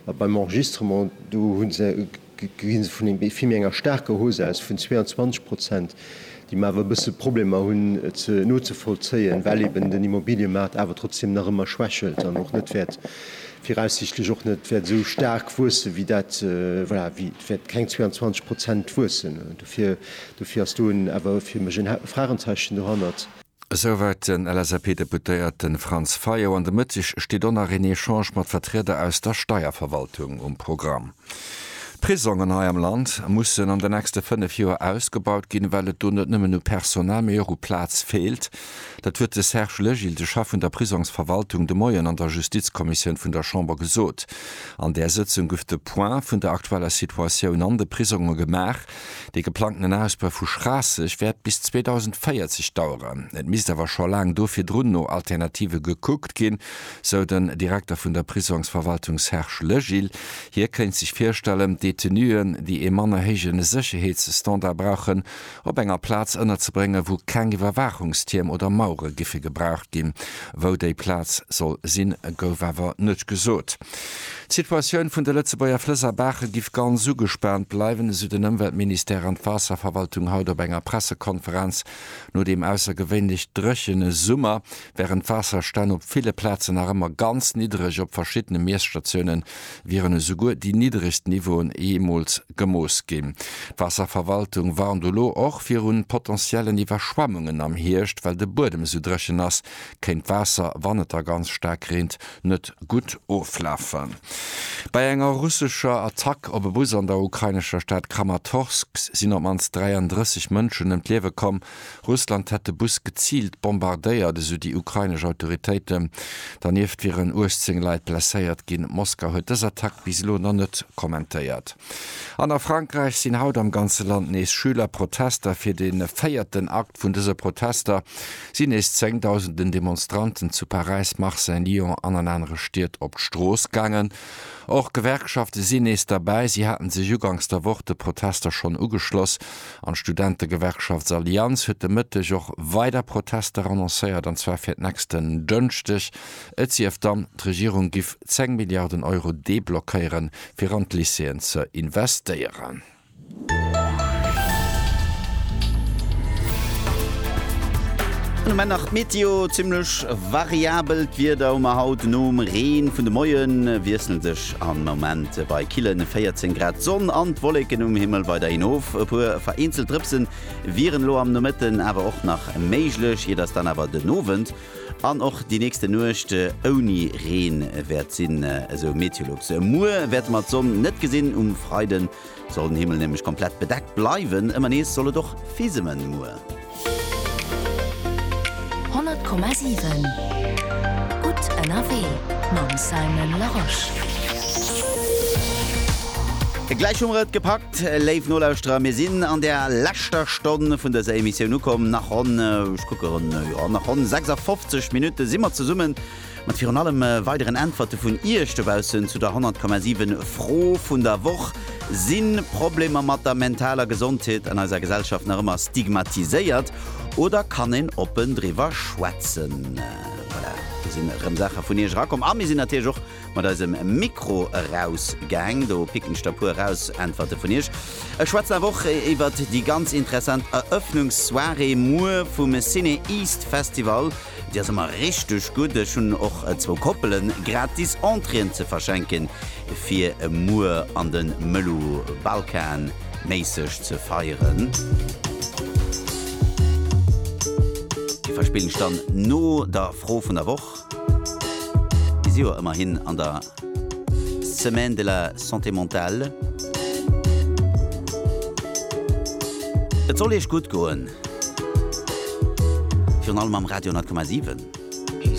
A beim Enregistrement, do hu se, gi se vun vill méi enger staarker Hausse aus vun 22 Prozent, déi mer awer e bësse Problemer hunn nozevollzéien, well eeben den Immobiliëmaart awer trotzdem nach ëmmer schwächelt an och net wäert, viraussichtlech och net wäert esou staark wuessen, wéi dat, voilà, wéi, et wäert keng 22 Prozent wuessen. Dofir, dofir ass do en, awer fir mech en Fragenzeichen dohannert. Esouwäit den LSAP-Deputéierte Franz Fayot. An de Mëtteg steet och nach een Echange mat Vertrieder aus der Steierverwaltung um Programm. D'Prisongen hei am Land mussen an den nächste 5 Joer ausgebaut ginn, well et do net nëmmen u Personal, mee och u Plaz feelt. Dat huet de Serge Legil, de Chef vun der Prisongsverwaltung, de Moien an der Justizkommissioun vun der Chamber gesot. An där Sëtzung gouf de Point vun der aktueller Situatioun an de Prisonge gemaach. Dee geplangten Ausbau vu Schraasseg wäert bis 2040 daueren. Et misst awer scho laang do virdrun no Alternative gekuckt ginn, sou den Direkter vun der Prisongsverwaltung Serge Legil. Hie kéint sech virstellen, Detenuen, déi ee manner héije Sécherheetsstandard brauchen, op enger Plaz ënnerzebréngen, wou keng Iwwerwaachungstierm oder Mauere giffe gebraucht ginn. Wou déi Plaz soll sinn, gouf awer net gesot. D'Situatioun vun de Lëtzebuerger Flëss a Baache giff ganz ugespaant bleiwen, esou den Ëmweltministère an d'Waasserverwaltung haut op enger Pressekonferenz. No deem aussergewéinlech dréchene Summer wären d'Waasserstänn op ville Plazen nach ëmmer ganz niddreg, op verschiddene Miesstatioune wieren esouguer déi niddregst Niveauen jeemools gemooss ginn. D'Waasserverwaltung warnt elo och viru potentiellen Iwwerschwemmungen am Hierscht. Well de Buedem esou dréchen ass, kéint d'Waasser, wann et da ganz staark reent, net gutt oflafen. Bei enger russescher Attack op e Bus an der ukrainescher Stad Kramatorsk sinn op d'mannst 33 Mënschen ëm d'Liewe komm. Russland hätt de Bus geziilt bombardéiert, esou déi ukrainesch Autoritéiten. Dernieft wieren 18 Leit blesséiert ginn. Moskau huet dës Attack bis elo nach net kommentéiert. An a Frankräich sinn haut am ganze Land nees Schülerprotester. Fir de véierten Akt vun dëse Protester sinn nees zéngdausenden Demonstranten zu Paräis, Marseille, Lyon an an anere Stied op d'Strooss gaangen. Och Gewerkschafte sinn nees derbäi. Si hate sech uganks der Woch de Protester schonn ugeschloss an d'Studentegewerkschaft Allianz huet de Mëtteg och weider Protester annoncéiert, an zwar fir d'nächsten Dënschdeg Et sief dann, d'Regierung giff 10 Milliarden Euro deblockéieren, fir an d'Lycéeën ze investéieren. An um Enn nach d'Meteo, Zimmlech variabelt Wieder hu mer haut. Nom Reen vun de Moie wiessle sech am Moment bei kille 14 Grad d'Sonn an d'Wolleken um Himmel weiderhin of. E puer vereenzelt Drëpse wieren elo am Nomëtten awer och nach méiglech, ier dass dann awer den Owend An och déi nächste Nuecht ouni Reen wäert sinn, esou Meteolux. Muer wäerte mer d'Sonn net gesinn, um Freide soll den Himmel nämlech komplett bedeckt bleiwen. Ëmmer nees soll et och fisemen muer. 100,7 gutt ënnerwee mam Simon Larosche. Gläich hu mer et gepackt. Léif Nolauschterer, mir sinn an der leschter Stonn vun dëser Emissioun ukomm. Nach ronn, ech kucke ronn, jo, nach ronn 56 Minutte si mer zesummen, mat virun allem weideren Äntwerte vun Iech dobaussen zu der 100,7 Fro vun der Woch, Sinn Problemer mat der mentaler Gesondheet an eiser Gesellschaft nach ëmmer stigmatiséiert oder kann een oppen driwwer schwätzen? Voilà, do sinn erëm Saache vun Iech erakomm a mir sinn natierlech och Mat eisem Mikro eraus gaang. Do picken ech der puer eraus. Äntwerte vun iech. Ech schwätzen awer och iwwert déi ganz interessant Eröffnungssoirée muer vum Ciné East Festival. Déi ass ëmmer richteg gutt. Ech hunn och zwou Koppelen gratis Entréeën ze verschenken, fir muer an de Mëllu Balkan méisseg ze feieren. Déi verspillen ech dann no der Fro vun der Woch. Bis ewell ëmmerhin an der Semaine de la Santé Mentale. Et soll Iech gutt goen, virun allem am Radio 10,7.